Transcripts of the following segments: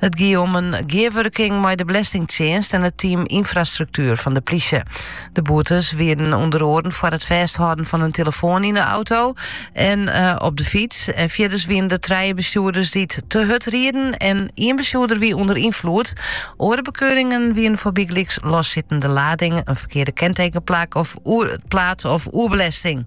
It gie om in gearwurking mei de Belastingtsjinst en it team Infrastructuur fan de plysje. De boetes wienen ûnder oaren foar it fêsthâlden fan in telefoan yn de auto en eh, op de fyts. En fierders wienen der trije bestjoerders dy't te hurd rieden en ien bestjoerder wie ûnder ynfloed. Oare bekeuringen wienen foar bygelyks lossittende lading, in ferkearde kentekenplak of eh, plaat of oerbelesting.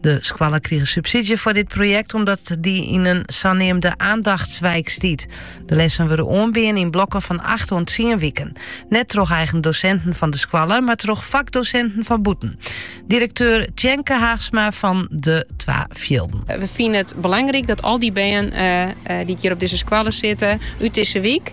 De skoalle krige subsydzje foar dit projekt omdat dy yn in saneamde aandachtswijk stiet. De lessen wurde oanbean yn blokken fan 8 oant 10 wiken. Net troch eigen dosinten fan de skoalle, mar troch fakdosinten fan bûten. Direkteur Tjenke Haagsma fan de Twa Fjilden. Eh, we fine it belangryk dat al dy bern eh, eh, dy't hjir op dizze skoalle sitte, út dizze wyk,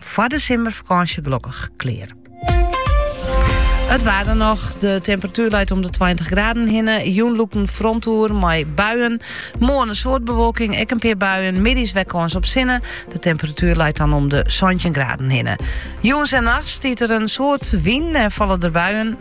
foar de simmerfakânsje glokkich klear. It waar dan noch. De temperatuer leit om de 20 graden hinne. Jûn lûkt in front oer mei buien. Moarn in soad bewolking, ek in pear buien. Middeis wer kâns op sinne. De temperatuer leit dan om de 17 graden hinne. Jûns en nachts stiet der in soad wyn en falle der buien.